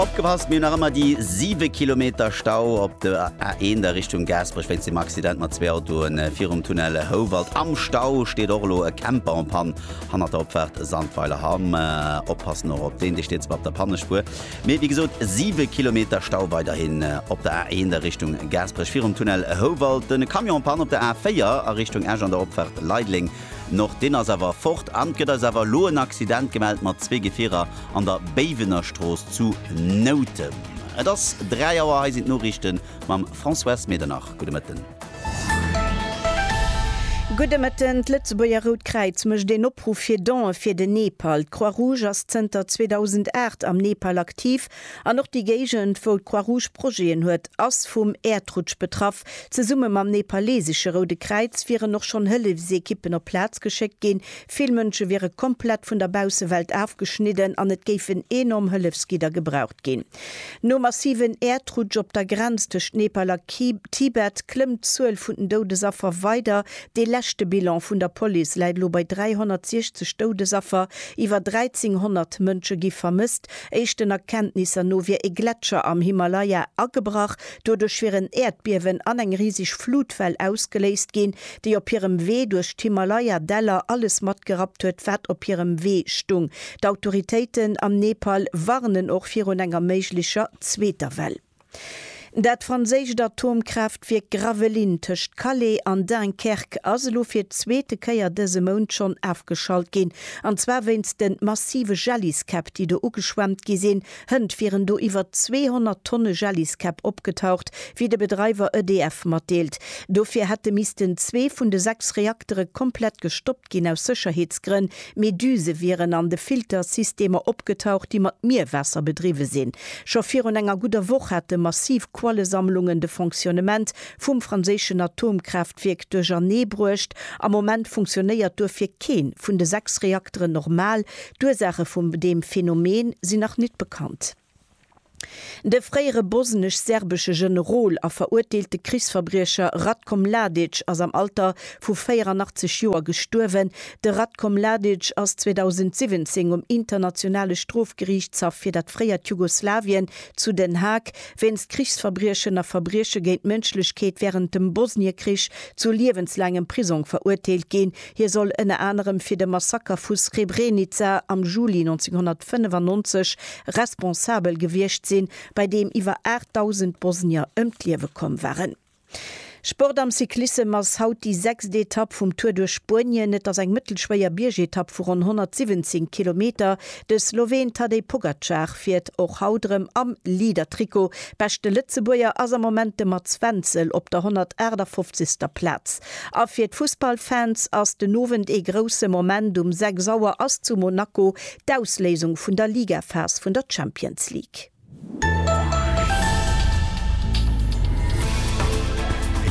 Opgepasst, mir hunn nach ëmmer déi 7 Kilometer Stau op der A1 a Richtung Gaasperech wéinst dem Accident mat zwee Autoen virum Tunnel Houwald. Am Stau steet och elo e Camper en Pann hannert der Opfaart Sandweiler Hamm. Oppassen och op deen, dee steet zwar op der Pannespuer, mee wéi gesot 7 Kilometer Stau weiderhin op der A1 a Richtung Gaasperech virum Tunnel Houwald. Den Camion en Pann op der A4 a Richtung Esch an der Opfaart Leideleng. Nord deen ass awer fort an 't gëtt eis awer elo en Accident gemellt mat zwee Gefierer an der Béiwenerstrooss zu Noutem. Et ass 3 Auer, hei sinn d'Noriichte mam François S. Medernach. Gudde Mëtten. Gudde Mëtten. D'Lëtzebuerger Rout Kräiz mécht een Opruff fir Don'e fir den Nepal. D'Croix Rouge ass zënter 2008 am Nepal aktiv An och déi Géigend, wou d'Croix-Rouge Projeten huet, ass vum Äerdrutsch betraff. Zesumme mam nepalesesche Roude Kräiz wieren och schonn Hëllefsekippen op d'Plaz geschéckt ginn. Vill Mënsche wiere komplett vun der Baussewelt afgeschnidden an et géifen enorm Hëllefsgidder gebraucht ginn. Nom massiven Äerdrutsch op der Grenz tëscht Nepal a Tibet klëmmt d'Zuel vun den Doudesaffer weider. Dee leschte Bilan vun der Police läit elo bei 360 Doudesaffer. Iwwer 1.300 Mënsche gi vermësst. Éischten Erkenntnisser no wier e Gletscher am Himalaya agebrach. Doduerch wier en Äerdbiewen an eng riseg Flutwell ausgeléist ginn, déi op hirem Wee duerch d'Himalaya-Däller alles matgerappt huet, wat op hirem Wee stung. D'Autoritéiten am Nepal warnen och virun enger méiglecher zweeter Well. Dat franséischt Atomkraaftwierk Gravelines tëscht Calais an Dunkerque ass elo fir d'zweete Kéier dëse Mount schonn afgeschalt ginn, an zwar wéinst de massive Jelliskäpp, déi do ugeschwemmt gi sinn. Hënt wieren do iwwer 200 Tonne Jelliskäpp opgetaucht, wéi de Bedreiwer EDF matdeelt. Dofir hätte missten zwee vun de sechs Reaktere komplett gestoppt ginn, aus Sécherheetsgrënn, Meduse wieren an de Filtersystemer opgetaucht, déi mat Mierwaasser bedriwwe sinn. Scho virun enger gudder Woch hate massiv Quallesammlungen de Fonctionnement vum franséischen Atomkraaftwierk duerchernee bruecht. Am Moment funktionéiert duerfir kee vun de sechs Reakteren normal. D'Ursaache vum deem Phenomen sinn nach nit bekannt. De fréiere bosnesch-serbesche Generol a verurteelte Krichsverbriecher Ratko Mladic ass am Alter vu 84 Joer gestuerwen. De Ratko Mladic ass 2017 um Internationale Strofgeriichtshaff fir dat fréiert Jugoslawien zu Den Haag wéinst Krichsverbriechen a Verbrieche géint d'Mënschlechkeet wärend dem Bosniekrich zu liewenslaangem Prisong verurteelt ginn. Hie soll ënner anerem fir de Massaker vu Srebrenica am Juli 1995 responsabel gewiescht sinn, bei deem iwwer 8.000 Bosnier ëm d'Liewe komm waren. Sport am Cyclissem ass haut déi sechst Etapp vum Tour duerch Spuenien. Et ass eng mëttelschwéier Biergetapp vu ronn 117 Kilometer. De Sloween Tadej Pogacar fiert och haut erëm am Leader-Trikot. Beschte Lëtzebuerger ass am Moment de Mats Wenzel op der 158. Plaz. A fir d'Fussballfans ass den Owend ee grousse Moment, um 6 Auer ass zu Monaco d'Ausléisung vun der Ligaphas vun der Champions League.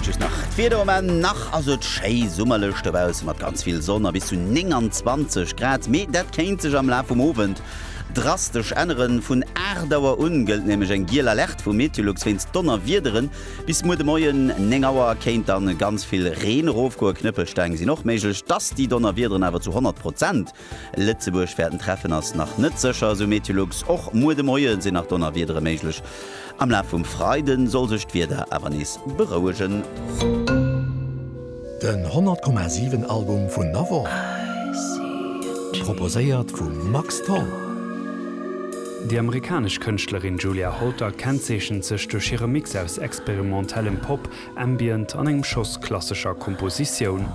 Just nach d'Wieder um Enn, nach ass et schéi summerlech dobausse mat ganz vill Sonn a bis zu 29 Grad, mee dat kéint sech am Laf vum Owend drastesch änneren. Vun 8 Auer un gëllt nämlech eng giel Alerte vu Meteolux wéinst Donnerwiederen. Bis muer de Moien 9 Auer kéint dann ganz vill Reen erofgoen, Knëppelsteng sinn och méiglech. Dass déi Donnerwiederen awer zu 100 Prozent Lëtzebuerg wäerten treffen ass nach net sécher, esou Meteolux. Och muer de Moie sinn nach Donnerwiedere méiglech, am Laf vum Freide soll sech d'Wieder awer nees berouegen. Den 100,7 Album vun Navor, proposéiert vum Max Tholl. Déi amerikanesch Kënschtlerin Julia Holter kennzeechent sech duerch hire Mix aus experimentellem Pop, Ambient an engem Schoss klassescher Kompositioun.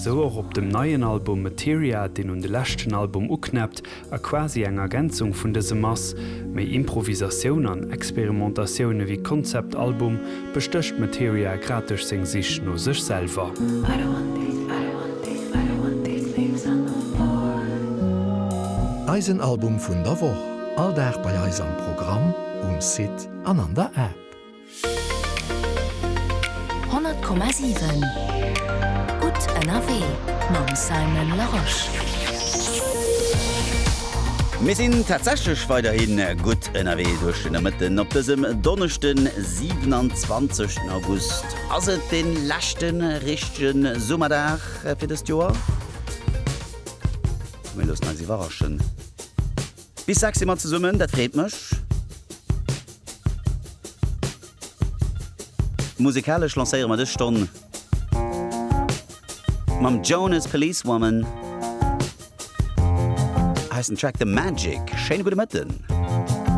Sou och op dem neien Album Materia, deen un de leschten Album uknäppt, A quasi eng Ergänzung vun dësem ass, méi Improvisatioun an Experimentatioun ewéi Konzeptalbum, bestécht Materia grad duerch seng Sich no sech selwer. Eisen Album vun der Woch, all Dag bei eis am Programm, um Site an an der App. 100,7 Gutt ënnerwee mam Simon Larosche. Mir sinn tatsächlech weiderhi gutt ënnerwee duerch de Nomëtten. Op dësem Donneschden, 27 den August, ass et de leschte richtege Summerdag fir dëst Joer. Mir loossen eis iwwerraschen. Bis 6 si mer zesummen, dat freet mech. Musikalesch lancéiere mer dës Stonn mam Jonas Policewoman. Hei ass den Track The Magic. Schéine gudde Mëtten.